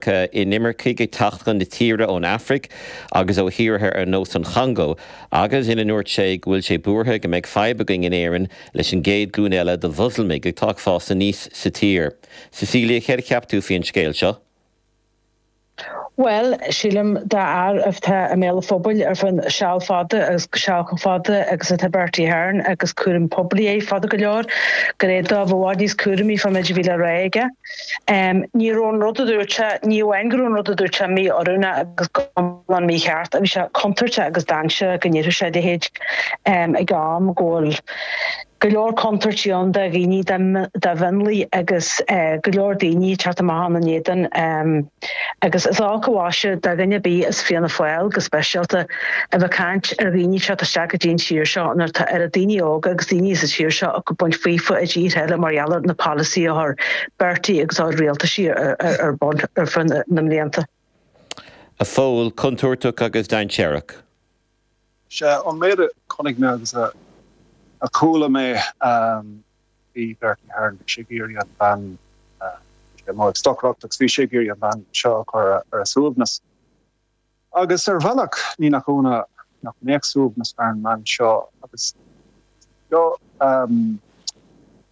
K. inimircigh ag teacht chun na tíre ón Afraic agus ó thíortha ar nós an Chongó, agus ina ndúirt sé go bhfuil sé buartha go mbeidh fadhb againn in Éirinn leis an gcéad glúin eile de Mhoslamaigh atá ag fás aníos sa tír. Cecilia, céard a cheap tú faoi an scéal seo? Bhuel, sílim, d'fhear atá i mbéal an phobail ar feadh seal fada agus i bpolaitíocht chomh fada agus atá Bertie Ahern agus cúram poiblí aige fada go leor, go mbeadh sé i bhfad níos cúramaí fán méid a bhí le rá aige. Ní raibh an rud a dúirt sé, ní amháin go raibh an rud a dúirt sé mí-oiriúnach agus go hiomlán mícheart, ach bhí sé contúirteach agus dainséarach go ndéarfadh sé a leithéid ag am go bhfuil go leor contúirtí ann do dhaoine, do mhionlaigh agus go leor daoine ag teacht amach ann in éadan Agus is olc an mhaise do dhuine ar bith i bhFianna Fáil go speisialta, a bheith ag caint ar dhaoine atá ag teacht isteach go dtí an tír seo nuair atá oiread daoine óga agus daoine sa tír seo ag baint faofa i dtíortha eile mar gheall ar na polasaithe a chuir Bertie agus a rialtais ar bun ar feadh na mblianta. A Phóil, contúirteach agus dainséarach. Sé an méid a chonaic mé agus a chuala mé, bhí Bertie Ahern, bhí sé ag iarraidh an bhean a, bhí sé amuigh ag stocaireacht agus bhí sé ag iarraidh an bhean seo a chur ar a suaimhneas. Agus ar bhealach ní nach ionadh nach mbeadh suaimhneas ar an mbean seo agus go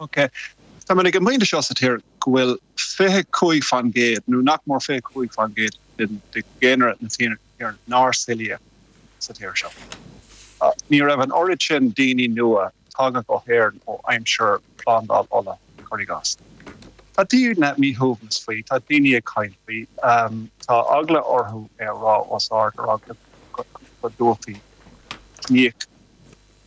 OK. Táimid ag an bpointe seo sa tír go bhfuil fiche cúig faoin gcéad, nó nach mór fiche cúig faoin gcéad de dhaonra na tíre nár saolaíodh sa tír seo. Ní raibh an oiread sin daoine nua tagtha go hÉirinn ó aimsir Phlandáil Uladh, cuir i gcás. Tá daoine míshuaimhneach faoi, tá daoine ag caint faoi, tá eagla orthu é a rá os ard, ar eagla go dtabharfaí ciníoch.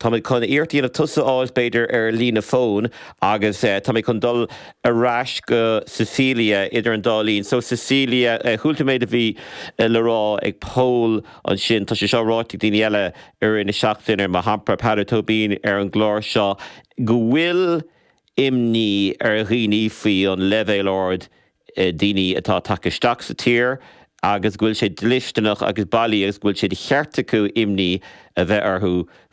Táimid chun iarracht a dhéanamh tusa a fháilt, b'fhéidir, ar líne fóin agus táimid chun dul ar ais go Cecilia idir an dá linn. So, Cecilia, chuala tú an méid a bhí le rá ag Pól ansin. Tá sé seo ráite ag daoine eile i rith na seachtaine, mar shampla, Peadar Tóibín ar an gclár seo, go bhfuil imní ar dhaoine faoi an leibhéal ard daoine atá tagtha isteach sa tír agus go bhfuil sé dlisteanach agus bailí agus go bhfuil sé de cheart acu imní a bheith orthu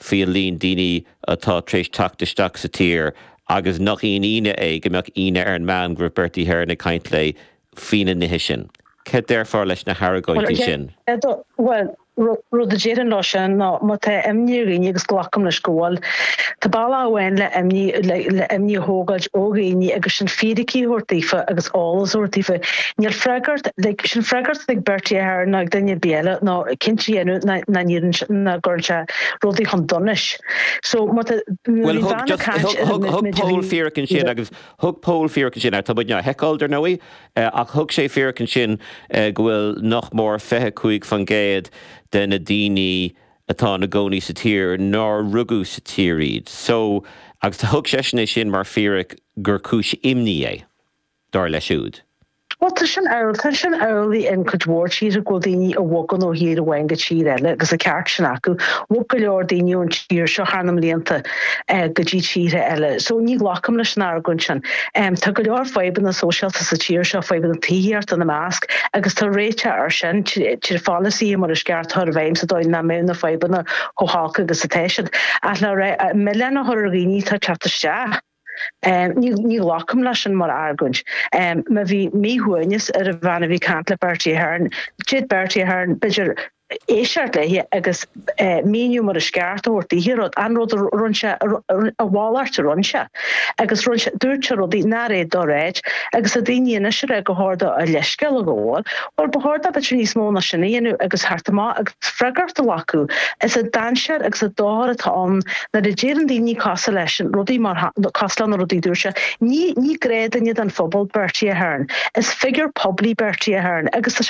faoi an líon daoine atá tar éis teacht isteach sa tír agus nach aon ionadh é go mbeadh imní ar an mbean go raibh Bertie Ahern ag caint léi faoi na nithe sin. Cad déarfá leis na haragóintí sin? Bhuel, Rud a déarfainn leis sin ná má tá imní ar dhaoine, agus glacaim leis go bhfuil, tá bealach amháin le imní le imní a thógáilt ó dhaoine agus sin fíricí a thabhairt daofa agus eolas a thabhairt daofa. Tá freagracht, tá freagracht ar Bertie Ahern nó ar dhuine ar bith eile ná cinnte a dhéanamh nach nach nach gcuireann sé rudaí chun donais. So má tá Bhuel thug just thug Pól fíric ansin agus thug Pól fíric ansin a tá muid in ann a sheiceáil dar ndóigh. Ach thug sé fíric ansin go bhfuil nach mór fiche cúig faoin gcéad de na daoine atá ina gcónaí sa tír nár rugadh sa tír iad. So, agus thug seisean é sin mar fíric gur cúis imní é, dar leis siúd. Bhuel, tá sin amhlaidh, tá sin amhlaidh in cuid mhór tíortha, go bhfuil daoine a bhogann ó thír amháin go tír eile, agus an ceart sin acu. Bhog go leor daoine ón tír seo thar na mblianta. go dtí tíortha eile. So ní ghlacaim leis an argóint sin. Tá go leor fadhbanna sóisialta sa tír seo, fadhbanna tithíochta ina measc, agus tá réiteach air sin trí pholasaithe mar is ceart a chur i bhfeidhm sa dóigh nach mbeidh na fadhbanna chomh holc agus atá siad. Ach le ráit an milleán a chur ar dhaoine atá ag teacht isteach, ní ghlacaim leis sin mar argóint. Má bhí míshuaimhneas ar an bhean a bhí ag caint le Bertie Ahern, d'fhéad Bertie Ahern b'fhéidir, Éisteacht léi agus míniú mar is ceart a thabhairt daoithe rud, an rud a rinne sé, a mhalairt a rinne sé, agus rinne sé, dúirt sé rudaí nár fhéad dó a ráit, agus le daoine anois a rá gur cheart dó a leithscéal a ghabháil, bhuel, ba cheart dó b'fhéidir níos mó ná sin a dhéanamh agus theacht amach agus freagracht a ghlacadh. Is é an dainséar agus an dochar atá ann nuair a deireann daoine cosúil leisean rudaí mar cosúil le na rudaí a dúirt sé. Ní, ní gnáthduine den phobal Bertie Ahern. Is figiúr poiblí Bertie Ahern agus tá sé